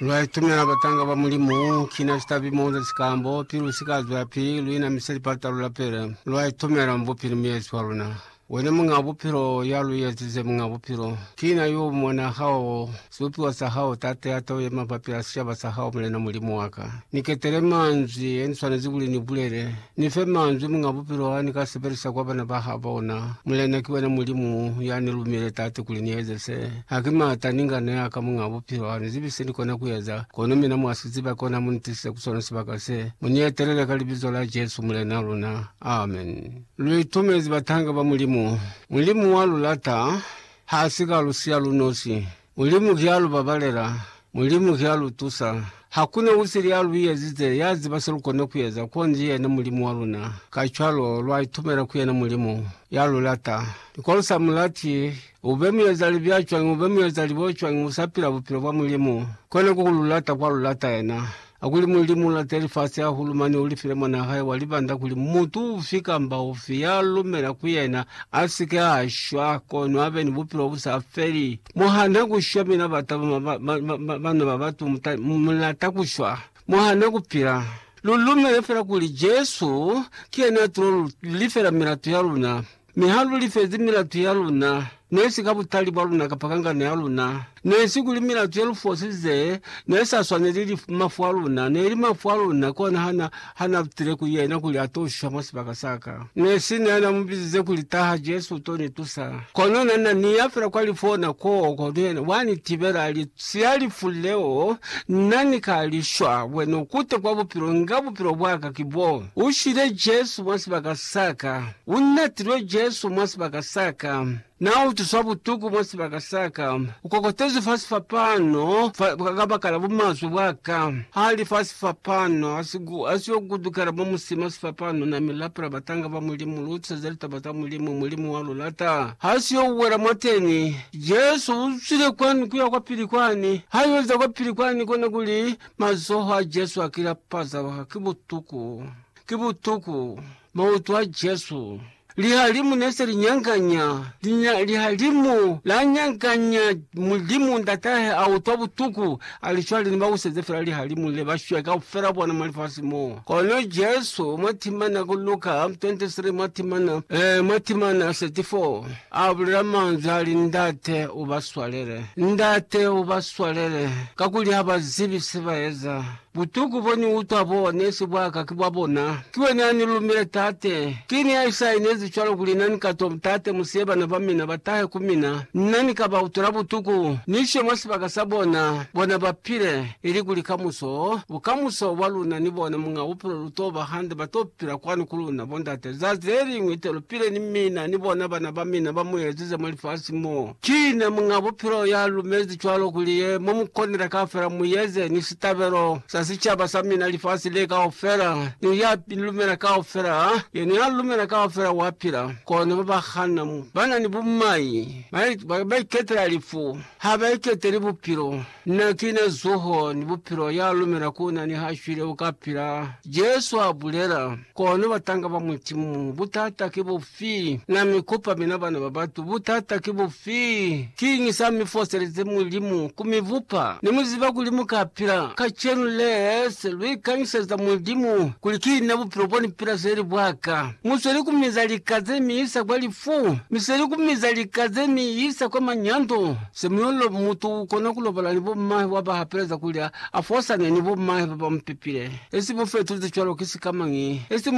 Lwa itumela batanga ba Mulimu, kina citabi moza cikambo, pilu si ka zwela pi luina mi se lipatalo la pele. Lwa itumela Mubupi ni Muezi wa luna. Wena Muñaa Bupilo, ya lu ezize Muñaa Bupilo, kina yo u mona hao, sibupiwa sa hao, Tate ya to yema mabapi a sicaba sa hao, Mulena Mulimu wa ka. Ni ketele manzwi ye ni swanezi kuli ni bulele. Ni fe manzwi Muñ'a Bupilo a ni ka sebelisa kwa bana ba ha bona. Mulena ki wena Mulimu ya ni lumile Tate kuli ni eze se. Ha ki mata ni nga neya ka Muñ'a Bupilo a ni zibi se ni kona ku eza, kono mina mwa si ziba, kona mu ni tisise ku sona sibaka se. Mu ni etelele ka Libizo la Jesu, Mulena luna. Amen. Lu itumezi batanga ba Mulimu. Mulimu wa lu lata. Ha si ka lu siya lu nosi. Mulimu ki a lu babalela, Mulimu ki a lu tusa. Hakuna usili ya lu yezize, ya ziba se lu kona ku eza, konji yena Mulimu wa luna. Kacwalo, lwa itumela ku yena Mulimu, ya lu lata. Ni kono sa mu lati, ube muezalibi ya cwañi, ube muezalibi o cwañi, u sa pila bupilo bwa Mulimu, kona ku ku lu lata kwa lu lata yena. A kuli Mulimu ulata lifasi hahulu mane ulifile Mwanaa hae wa libanda kuli mutu ufi kamba ufi ya lumela ku yena asike a shwa, kono abe ni bupilo bu sa feli. Mo hana ku shwa, mina bata bana ba batu mu lata ku shwa. Mo hana ku pila. Lu lumele fela kuli Jesu ki yena a tulo lu lifela milato ya luna. Mi ha lu lifezi milatu ya luna, ne si ka butali bwa luna kapa kangano ya luna, ne si kuli milatu ye lu fosize ne sa swaneli lifu, mafu a luna ne li mafu a luna, kona ha na, ha na lutile ku yena kuli a to shisha mwa sibaka sa ka. Ne sina ya na mu bizize kuli, Taha, Jesu, u to ni tusa. Kono na, na ni ya fela kwa lifu ona koo, kono yena wa ni tibela, a li, Siya lifu leo, nna ni ka li shwa, wena u kute kwa bupilo, nga bupilo bwa ka ki bo. U shwile, Jesu, mwa sibaka sa ka. U natilwe Jesu mwa sibaka sa ka, Na utuswa butuku mwa sibaka sa ka, U kokotezwi fa sifapano fa kabakala bumazwe bwa ka. Ha li fa sifapano, ha si yo kutukela mwa musima sifapano, Na mi lapela batanga ba Mulimu, Lu utuseza litaba ta Mulimu, Mulimu wa lu lata. Ha si yo wela mwateni. Jesu u zwile kwani kuya kwapili kwani. Ha yo liza kwapili kwani, kona kuli mazoho a Jesu a ki lapaza, Ki butuku! Ki butuku! Mautu a Jesu, lihalimu ne se li nyanganya, lihalimu la nyanganya Mulimu Ndatahe, a utwa butuku, a li cwale ni ba buseze fela lihalimu le, ba shwe kaufela bona mwa lifasi mo. Kono Jesu, mwa timana ku Luka 23, mwa timana, eh, mwa timana 34, a bulela manzwi a li, Ndate, u ba swalele. Ndate, u ba swalele, kakuli ha ba zibi se ba eza. Butuku bo ni utwa bo ne si bwa ka ki bwa bona. Ki wena ya ni lumile, Tate. Ki ni ya isainezi cwalo kuli na ni ka twa, Tate, mu siye bana ba mina ba tahe ku mina, na ni ka ba utwela butuku, ni ishiye mwa sibaka sa bona, bona ba pile, ilikuli kamuso, bukamuso bwa luna ni bona, Muñ'a Bupilo, lu t'o ba hande, ba t'o pila kwanu ku luna, Bo Ndate, lizazi le liñwi te lu pile ni mina, ni bona bana ba mina ba mu ezize mwa lifasi mo. Ki ne Muñ'a Bupilo ya lumezi cwalo kuli ye mo mu konela kaufela mu yeze ni sitabelo sa sicaba sa mina lifasi le kaufela, ni ya lumela kaufela, ha yena ya lumela kaufela wa pila. Kono ba ba hana mu, ba na ni bumai, ba, ba, ba iketela lifu, ha ba iketeli Bupilo. Na ki na zuho ni bupilo, ya lumela ku na niha shwile u ka pila, Jesu a bulela. Kono batanga ba Mulimu, butata ki bufi? Na mi kupa mina bana ba batu, butata ki bufi? Kiñi sa mi foselezi Mulimu ku mi bupa? Ne mu ziba kuli mu ka pila. Kacenu le, se lu ikanyiseza Mulimu kuli ki na bupilo bo ni pila se li bwa ka. Mu sweli ku miza lika ze mi isa kwa lifu, mi sweli ku miza lika ze mi isa kwa manyando. Semuelo mutu ukona kulobala ni bommahe waba hapeleza kuli afosane ni bommahe baba mupepile. Esi mufetuzi cwalo ki sikamañi? Esi